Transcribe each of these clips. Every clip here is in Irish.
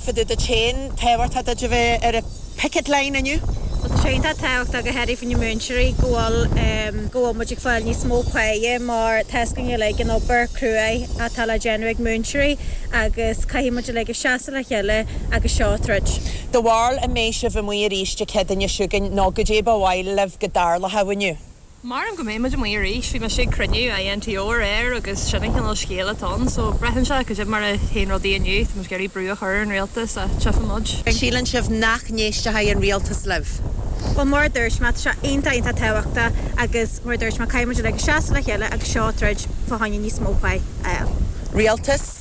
fadó duit féin, tábhachtach duit a bheith ar an picket line inniu. Tá sé iontach tábhachtach a theilifíse na múinteoirí go bhfuil go bhfuil muid ag fáil níos mó páighe mar teas go ngile ag an obair cruaidh atá le déanamh ag múinteoirí agus caithfidh muid uilig a seasamh le chéile agus seo troid. Goidé do bharúil an mbeidh sibh amuigh arís Dé Céadaoin seo chugainn nó goidé ba mhaith libh go dtarlódh inniu? Maram go mbeidh muid amuigh arís. Bhí mise ag cruinniú INTO aréir agus sin an cineál scéala atá ann. So, braitheann sé goidé mar a théann rudaí inniu. Tá muid ag iarraidh brú a chur ar an rialtas ach tífidh muid. Síleann sibh nach n-éistfidh an rialtas libh? Bhuel, mar a dúirt mé, tá sé iontach, iontach tábhachtach agus mar a dúirt mé, caithfidh muid uilig seasamh le chéile agus seo troid fá choinne níos mó páighe. Rialtas?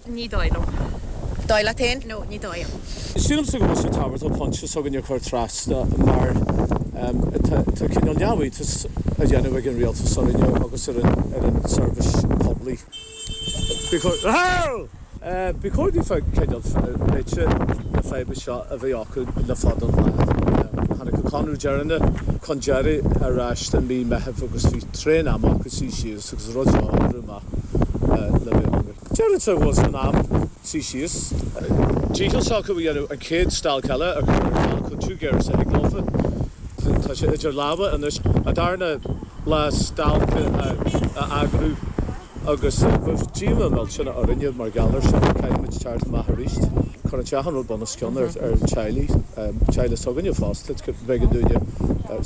Ní dóigh liom. Dóigh leat féin? No, ní dóigh liom. Sílimse go bhfuil sé tábhachtach pointe s'againne a chur trasna mar tá cineál neamhiontas á dhéanamh ag an rialtas orainne agus ar an tseirbhís poiblí. Ba chóir daofa an cineál réiteach na faidhbe seo a bheith acu le fada an lá. Tháinig an conradh deireanach chun deiridh ar ais i mí Meithimh agus bhí tréan ama acu suí síos agus rud seo a oibriú amach le bliain anuas. Deirimse go bhfuil sé in am suí síos. Dícheall s'acu a dhéanamh an chéad stailc eile a chur ar ceal chomh tiubh géar is a thig leofa. Tá sé idir lámha anois a' darna lá stailce a eagrú agus bheadh díomá mhillteanach orainne mar gheall air sin. Caithfimid teacht amach aríst. Cuireann sé achan rud bunoscionn ar theaghlaigh, teaghlaigh s'againne fosta, b'éigean dúinne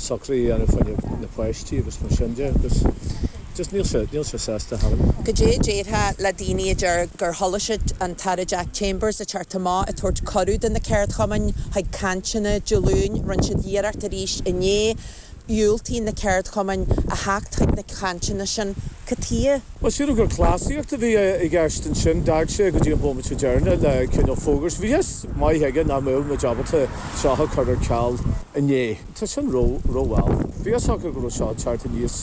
socruithe a dhéanamh faoi na páistí agus mar sin de agus. Just níl sé, níl sé sásúil ar chor ar bith. Goidé a déarfá le daoine a deir gur chuala siad an tAire Jack Chambers ag teacht amach ag tabhairt cuireadh do na ceardchumainn chuig cainteanna Dé Luain? Rinne siad iarracht aríst inné. Dhiúltaigh na ceardchumainn a theacht chuig na cainteanna sin. Cad chuige? Más fíor gur cleasaíocht a bhí i gceist ansin, d'fhág sé go dtí an bhomaite deireanach le cineál fógairt. Bhí fhios maith aige nach mbeadh muid ábalta seo a chur ar ceal inné. Tá sin ró, rómhall. Bhí fhios acu go raibh seo ag teacht aníos.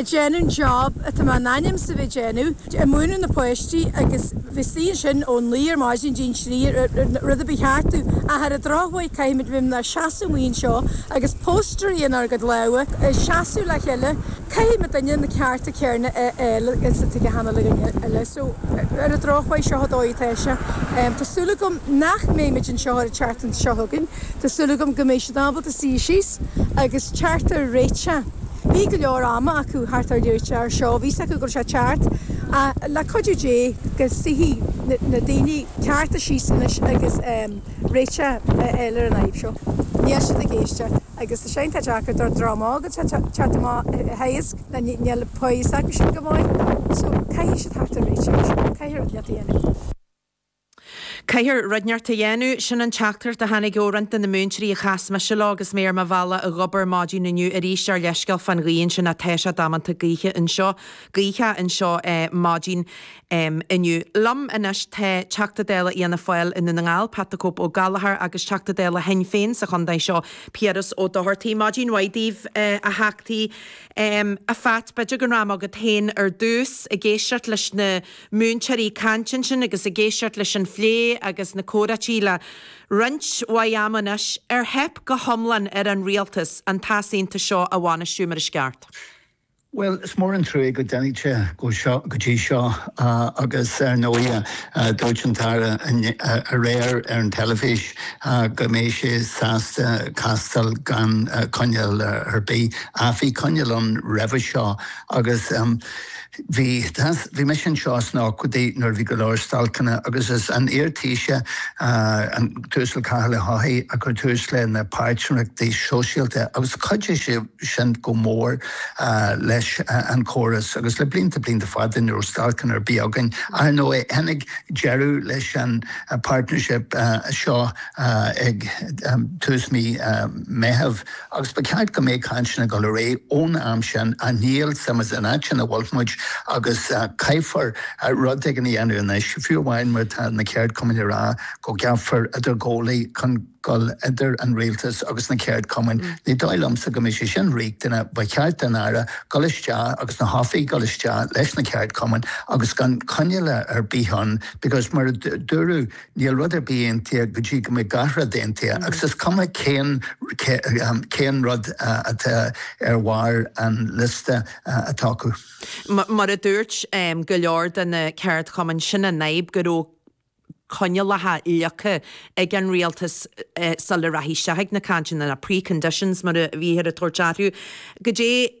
ag déanamh an job atá mé in ainm is a bheith ag déanamh, ag múineadh na páistí agus bheith istigh ansin ón naoi ar maidin dtí'n trí ar rud ar bith cheartú ach ar an drochuair caithfimid bheith inár seasamh amuigh anseo agus póstaeraí inár gcuid lámha ag seasamh le chéile, caithfidh achan duine na cearta céarna a fháil agus atá ag achan duine eile so ar an drochuair seo an dóigh atá sé. Tá súil agam nach mbeimid anseo ar an tseachtain seo chugainn, tá súil agam go mbeidh siad ábalta suí síos agus cearta a réiteach. Bhí go leor ama acu teacht ar réiteach ar seo, bhí fhios acu go raibh sé ag teacht, ach le cuidiú Dé go suífidh na daoine cearta síos anois agus réiteach a fháil ar an fhadhb seo. Níl siad ag éisteacht agus tá sé iontach deacair don dream atá ag teacht amach a theagasc, níl pá s'acusan go maith, so caithfidh siad theacht ar réiteach ar seo, caithfidh rud le déanamh. Caithfear rud éigin a dhéanamh. Sin an teachtaireacht a tháinig ó roinnt de na múinteoirí a chas mise leo agus mé ar mo bhealach a dh'obair maidin inniu. Arís, ár leithscéal fán ghaoth ansin, tá sé damanta gaoithe anseo, gaothach anseo maidin inniu. Liom anois tá Teachta Dála Fhianna Fáil i nDún na nGall, Pat the Cope Ó Gallachóir agus Teachta Dála Shinn Féin sa chontae seo, Piaras Ó Dochartaigh. Maidin mhaith daoibh, a Theachtaí. A Phat, b'fheidir go rachainn agat féin ar dtús, ag éisteacht leis na. múinteoirí ag caint ansin agus ag éisteacht leis an phlé agus na comhráití le tréimhse mhaith ama anois, ar theip go hiomlán ar an rialtas an t-easaontas seo a bhainistiú mar is ceart. Bhuel, is mór an truaigh go dtáinig sé go dtí seo agus ar ndóighe, dúirt an tAire aréir ar an teilifís go mbeidh sé sásta castáil gan coinníoll ar bith, ach bhí coinníoll ann roimhe seo agus, Bhí bhí mise anseo sna ochtóidí nuair a bhí go leor stailceanna agus is é an iar-Taoiseach, an tUasal Cathal Ó hEochaidh, a chuir tús leis na páirtnéireachtaí sóisialta agus chuidigh sé sin go mór leis an chóras agus le blianta blianta fada ní raibh stailceanna ar bith againn. Ar ndóigh, tháinig deireadh leis an partnership seo ag tús mí Meitheamh. agus ba cheart go mbeadh cainteanna ag dul ar aghaidh ón am sin anois, ach seo muid san áit ina bhfuil muid agus caithfear rud éigin a dhéanamh anois, fiú amháin mar atá na ceardchumainn ag rá go gceapfar idirghabhálaí chun ghoil idir an rialtas agus na ceardchumainn. Ní dóigh liomsa go mbeidh sé sin riachtanach, ba cheart don Aire dhul isteach agus na hoifigigh dhul isteach leis na ceardchumainn agus gan coinníollacha ar bith ann because mar a dúradh Níl rud ar bith aontaithe go dtí go mbeidh gach rud aontaithe, agus is cuma cén rud atá ar bharr an liosta atá acu. Mar a dúirt go leor de na ceardchumainn, sin an fhadhb, go raibh coinníollacha leagtha ag an rialtas sula rachadh siad chuig na cainteanna, na pre-conditions mar a bhíothar ag tabhairt orthu. Goidé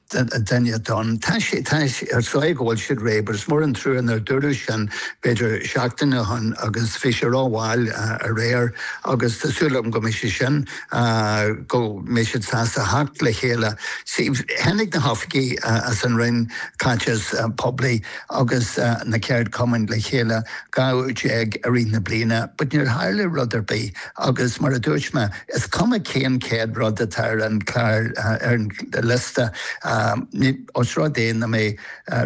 a déanadh, tá siad ag rá go bhfuil siad réidh, but is mór an trua nár dúradh sin b'fhéidir seachtain ó shin agus bhí sé rómhall aréir agus tá súil agam go mbeidh sé sin, go mbeidh siad sásta theacht le chéile. Sea, tháinig na hoifigigh as an Roinn Caiteachais Poiblí agus na ceardchumainn le chéile dhá uair déag i rith na bliana but níor tharla rud ar bith agus mar a dúirt mé, Is cuma cén chéad rud atá ar an chlár, ar an liosta, ní, os rud é nach mbeidh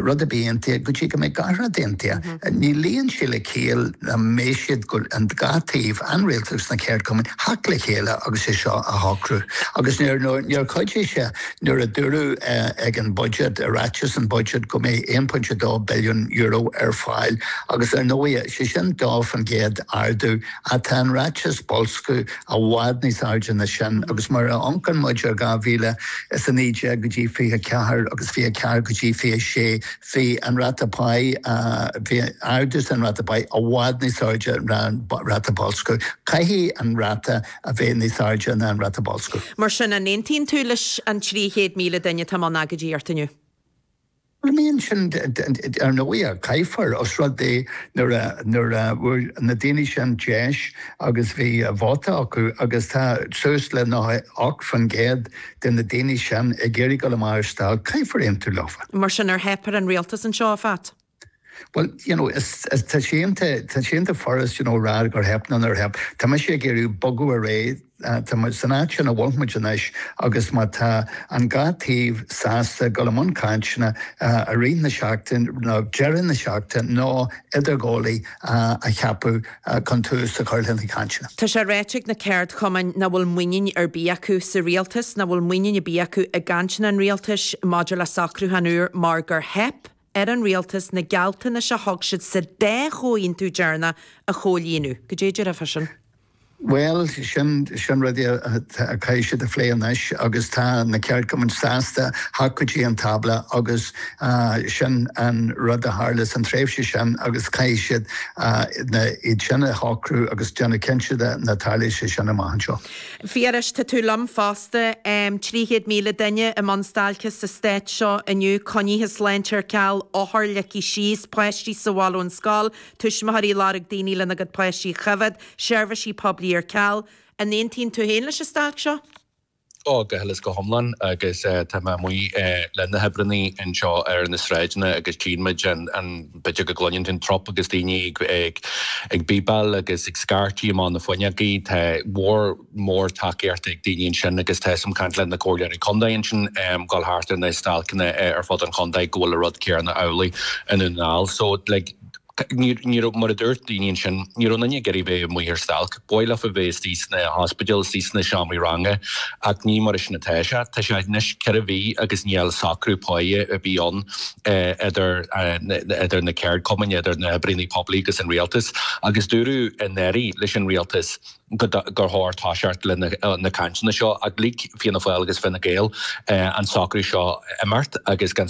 rud ar bith aontaithe go dtí go mbeidh gach rud aontaithe, ní luíonn sé le ciall nach mbeidh siad, an dá taobh, an rialtas agus na ceardchumainn, theacht le chéile agus é seo a shocrú. Agus níor, níor chuidigh sé nuair a dúradh ag an Budget, i ráiteas an Budget go mbeidh €1.2 billiún ar fáil agus ar ndóighe, sé sin dó fán gcéad ardú, Ach tá an ráiteas bolscadh i bhfad níos airde ná sin, agus nuair a amhancann muid ar 2019 go dtí 24 agus 24 go dtí 26, bhí an ráta páighe, bhí ardú san ráta páighe i bhfad níos airde ná an ráta bolscadh. Caithfidh an ráta a bheith níos airde ná an ráta bolscadh. Mar sin, an aontaíonn tú leis an 300,000 duine atá i mbun agóidíocht inniu? Bhuel, I mean, sin, ar ndóighe, caithfear, os rud é nuair a fuair na daoine sin deis agus bhí vóta acu, agus tá suas le 98% de na daoine sin ag iarraidh dul amach ar stailc, caithfear aontú leofa. Mar sin, ar theip ar an rialtas anseo, a Phat? Bhuel, you know, is, tá sé iontach, tá sé iontach furast, you know, a rá gur theip nó nár theip. Tá mise ag iarraidh bogadh ar aghaidh. Tá muid san áit ina bhfuil muid anois agus má tá an dhá taobh sásta dul i mbun cainteanna i rith na seachtaine, nó deireadh na seachtaine, nó idirghabhálaí a cheapadh chun tús a chur le na cainteanna. Tá sé ráite ag na ceardchumainn nach bhfuil muinín ar bith acu sa rialtas, nach bhfuil muinín ar bith acu i gcainteanna an rialtais maidir le socrúchán úr mar gur theip, ar an rialtas na gealltanais a thug siad sa dá chomhaontú deireanach a chomhlíonadh. Goidé a déarfá faoi sin? Bhuel, sin sin rudaí a chaithfidh siad a phlé anois agus tá na ceardchumainn sásta theacht go dtí an tábla agus sin an rud a tharla san tréimhse sin agus caithfidh siad na iad sin a shocrú agus déanamh cinnte de nach dtarlóidh sé sin amach anseo. Phiarais, Tá tú liom fós. de 300,000 duine i mbun stailce sa stát seo inniu, coinní sláinte ar ceal, othair ligthe síos, páistí sa bhaile ón scoil, tuismitheoirí ag lorg daoine lena gcuid páistí a choimhead, seirbhisí poiblí ar ceal. An aontaíonn tú féin leis an stailc seo? Go huile is go hiomlán agus tá mé amuigh le na hoibreannaí anseo ar na sráideanna agus tchíonn muid an, an, b'fhéidir go gcluineann tú an trup agus daoine ag, ag, ag bíbeáil agus ag scairtigh amach na fuinneogaí, tá, mhór, mór tacaíochta ag daoine ansin agus tá a fhios agam ag caint le na comhairleoirí contae ansin dul thart ar na stailceanna ar fud an chontae go bhfuil an rud céarna amhlaidh i nDún na nGall. So like ní raibh, mar a dúirt daoine ansin, ní raibh duine ag iarraidh bheith amuigh ar stailc. B'fhearr leofa bheith istigh sna hospidéil, istigh sna seomraí ranga ach ní mar a sin atá sé. Tá sé anois ceithre mhí agus níl socrú páighe ar bith ann idir idir na ceardchumainn, idir na hoibríonnaí poiblí agus an rialtas agus dúradh anuraidh leis an rialtas, gur chóir toiseacht lena cainteanna seo, ach lig Fianna Fáil agus Fine Gael an socrú seo imeacht agus gan